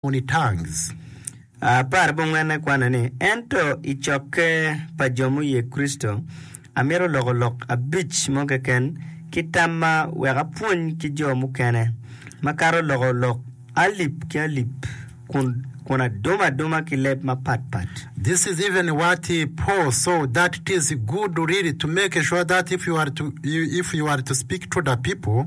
moni Tangs apar bongwenne kwane ni, Ento i cokke pa jo muye Kricito, amito loko lok abic mo keken ki tamma wek apwony ki jo mukene, makato loko lok alip ki alip kun adumo aduma ki leb mapat pat. This is even what Paul saw that it is good really to make sure that if you are to speak to the people,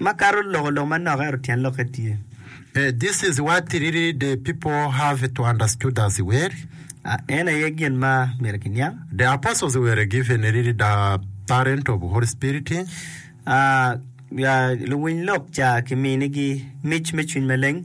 Makato loko lok manok ento tyen lokke tye. A. This is what really the people have to understood as weri. A. En aye gin ma myero kiniang. The apostles were given really the parent of Holy Spirit. A. Luwiny lok ca kiminigi mic me cwiny maleng.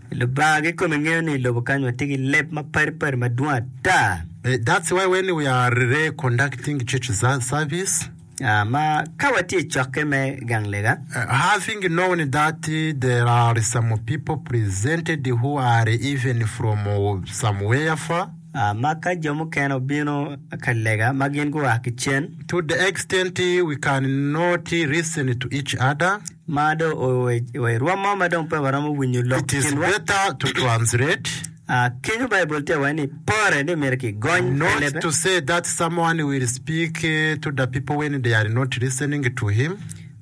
Lubanga kikome ngeyo ni ilobo kany watye ki leb ma padi padi madwong ata. That's why when we are re conducting church service. Ah, ma ka watye i cokke me gang lega. Having known that there are some people presented who are even from somewhere far. Ah, ma ka jo mukene obino ka lega ma gin gua ki cen. To the extent we can not listen to each other. Ma do wa i rwom mo ma dong pe waromo winyo lok kinwa. It is better to translate. Ah, kenyo Baibul tye waye ni pore ni myero kigony pe Not lebe. to say that someone will speak eh, to the people when they are not listening to him.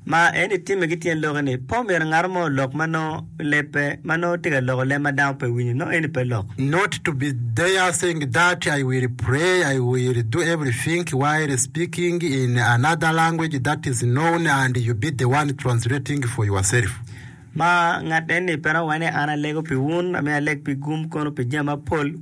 Ma en itimme ki tyen lokke ni po myero ngaro mo olok ma nongo pi lebbe ma nongo tye ka loko leb ma dano pe winyo, nongo eni pe lok. Not to be there saying that I will pray, I will do everything while speaking in another language that is known and you be the one translating for yourself. Ma ngat enni pe romo wai ni an alego pi wun, amiyo aleg pi gum kono pi jami mapol.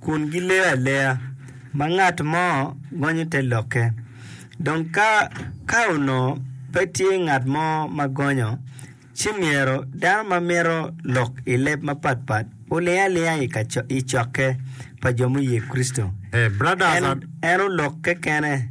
kun gileyo aleya, ma ngat mo gonyo te lokke. Dong ka, ka onongo pe tye ngat mo ma gonyo, ci myero dano ma mito lok i leb mapat pat oling alinga i ka, i cokke pa jo muye Kricito. Hey, brothers, en, en olok kekene.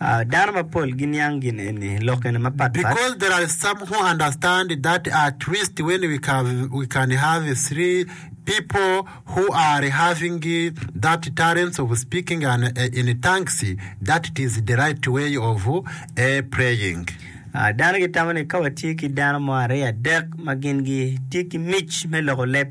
Dano mapol giniang gin eni i lok gene mapat pat. Because there are some who understand that at least when we can, we can have three people who are having that talents of speaking and uh, in tongues, that it is the right way of uh, praying. Ah, Dano gitamo ni ka watye ki dano mo aryo adek ma gin gitye ki mic me loko leb,